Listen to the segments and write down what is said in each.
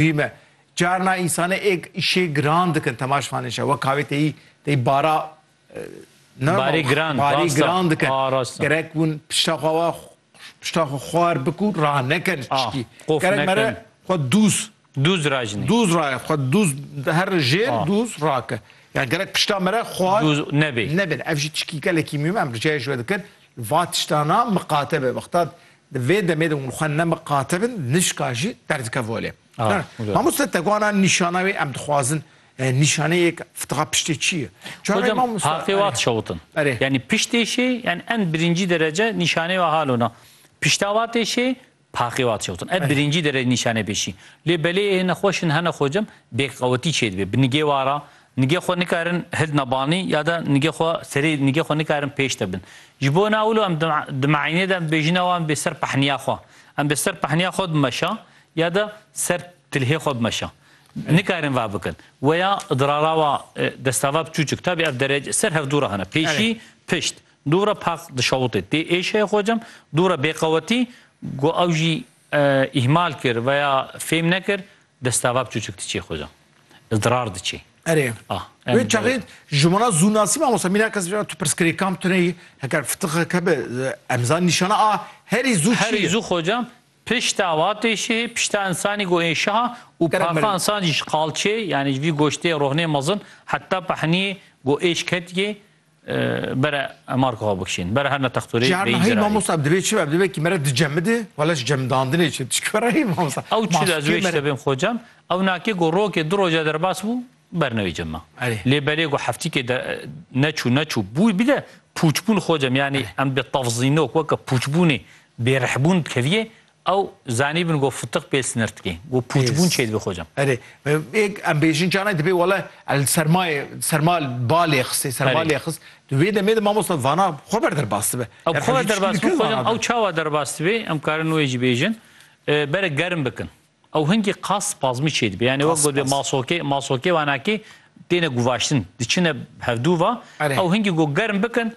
Hî me. Carna însanê ê îşê giran dikin temaş fanê şe. Wek kavê têyî têyî bara Barê giran, barê rasta. giran dikin. A, rasta. Gerek hûn pişta xwe wa pişta xwe xwar bikû rah nekin Ah, çikî. qof Gerek nekin. mere xwe dûz Dûz rajinî. dûz ra xwe dûz her jêr Ah. dûz rake. Yani gerek pişta mere xwar Dûz nebê. nebin. Ev jî çikî gelekî mîm em ricayê ji we dikin. Va tiştana miqate be. Wexta Di vê demê de hûn xwe nemiqatibin, nişka jî derdike volê. Mamoste Teguana nîşana wê em dixwazin nîşaneyek fitiqa piştê çi ye? Çaxê mamoste. Haqê wat şewitin. Yanî piştê şê yan en birincî derece nîşanê wa hal ona. Pişta watê şê paqê wat şewitin. Ev birincî derece nîşanê pê şî. Lê belê hêne xweş in hene xwecem bêqewetî çêdibê. Bi nigê wa ra Nigê xwe nikarin hildna banî ya de nigê xwe serê nigê xwe nikarin pêş de bin. Ji bo na wilo em di meînê de em dibêjin ew em bê ser pehniya xwe. Em bê ser pehniya xwe bimeşa ya de ser tilhê xwe bimeşa. Nikarin va bikin. Weya idrara wa destava biçûçik tabî ev derece ser hevdû re hene. Pêşî, pişt. Dû re paq dişewitê. Tê êşeyê xwe cem, dû re bêqewetî, got ew jî îhmal kir veya fêm nekir destava biçûçik diçê xweza. Idrar diçê. Erê. A. Wê çaxê ji wana zûnasî mamosta mîna kes tu pirsgirê kam tu neyî heger fitixe kebe em zan nîşana a herî zû çi ye? Herî zû xwecam pişta watê şihê pişta însanî go ê şiha û paxa însan jî ji qalçê yanî ji vî goştê rohnê mezin heta pehniyê go êş ketiyê Bere Mark xwe bikişîn. Bere her ne texturê Ji her bêyî nahî zirarî. mamosta divê çi be? Divê kî mere dicemide wala ji cemdandinê çi? Tu ji kwe re yî mamosta? Ew çi de ez Maskê wê ji te mere. bêm xwecem, ew nakê ku rokê du roja derbas bû ber newî cem ma. Erê. Lê belê ku heftîkê de neçû neçû bû bî de pûçbûn xwecem yanî em bi tefzînok weke pûçbûnê bêrihbûn dikeviyê Ew zanîbin ku fitiq bê sinir dike, ku pûçbûn çêdibe xocam. Erê, em bêjin canan dibê wele el sermayê serma balê xistê, serma lê xist. Di wê demê de mamosta vana xwe ber derbas dibe. Ew xwe ber derbas dibe xocam, ew çawa derbas dibe, em karin wê jî bêjin. Berê germ bikin. Ew hingî qas spazmî çêdibe. Yanî wek gotibê masokê, masokê wanakî têne guvaştin. Diçine hevdû va. Ew hingî ku germ bikin,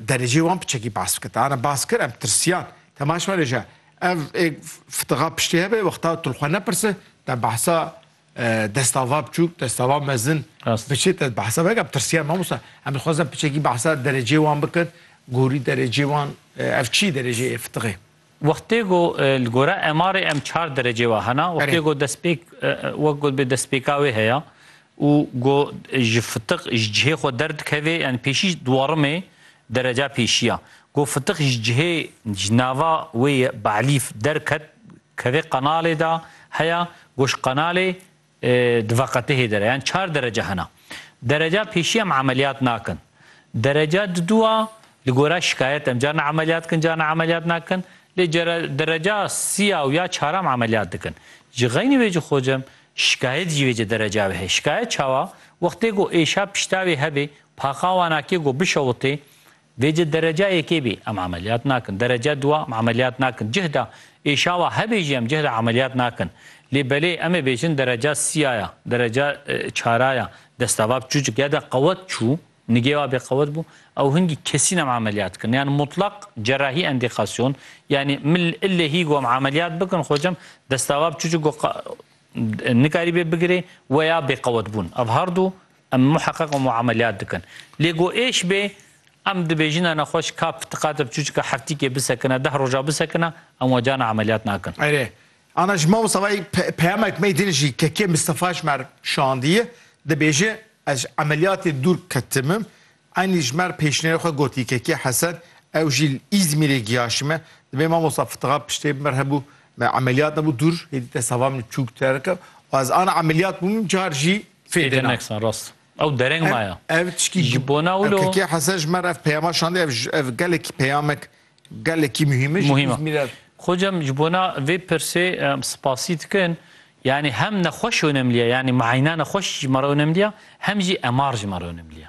Derecê wan piçekî bas bike. Tana bas kir em tirsiyan. Temaş me reja. Ev ê fitixa piştê hebe wexta tu li xwe nepirse te behsa destava biçûk, destava mezin biçê te behsa veke em tirsiyan mamosta. Em dixwazin piçekî behsa derecê wan bikin. Gorî derecê wan ev çi derecê ê fitixê? Wextê ku li gora MR'ê em çar derecê wa hena, wextê ku destpêk wek gotibê destpêka wê heye û ku ji fitiq ji cihê xwe derdikevê yanî pêşî duwarimê dereca pêşî ya. Ku fitiq ji cihê ji nava wê ye Be'lîf derket kevê qenalê de heye ku ji qenalê Di veqetihê de re yan çar derece hene. Dereca pêşî em emeliyat nakin. Dereca didu a li gora şikayet em carna emeliyat dikin carna emeliyat nakin. Lê dereca sî a û ya çar a em emeliyat dikin. Ji xeynî vê jî xwe cem şikayet jî vêce dereca ve heye. Şikayet çawa? Wextê ku êşa piştavê hebê, paqa wan a kê ku bişewitê Dê ji dereca yekê bê em emeliyat nakin, dereca dua em emeliyat nakin, cihda êşawa hebê jî em cihda emeliyat nakin. Lê belê em ê bêjin dereca sîya ya, dereca çara ya, destava bi çûçik ya de qewet çû, nigê wa bê qewet bû, ew hingî kesîn em emeliyat kirin. Yan mutlak cerahî endîkasyon, yanî min illê hî got em emeliyat bikin xocem, destava bi çûçik got nikarîbê bigirê weya bêqewetbûn. Ev herdu. Em muheqeq û muameleyat dikin. Lê ku êş bê, em dibêjin e nexweş ka pitiqate bi çûçika heftîkê bisekine, deh roja bisekine, em we carna emeliyat nakin. Erê, ana ji Mawsavayê peyamek me din jî KK Mistefa ji me re şandiye, dibêje, ez ji emeliyatê dûr ketim im, Eyn Lijmer pêşniyarê xwe got Yikekiya Hesed, ew jî li Îzmîrê giyaşime. Dibê mamosta Fitiga piştê bimir hebû me emeliyat nebû dûr hêdî te sava min çûk terika û ez ana emeliyat bûm min car jî fêdê na. Ew dereng maya. Ev tişkî ji bona wilo. Yikekiya Hesed ji me re ev peyama şandî ev ev gelekî peyamek gelekî muhîm e ji Îzmîr re. Xocam ji bona vê pirsê em sipasî dikin. Yanî hem nexweş onemliya yanî miynane xweş ji me re onemliya hem jî MR ji me re onemliya.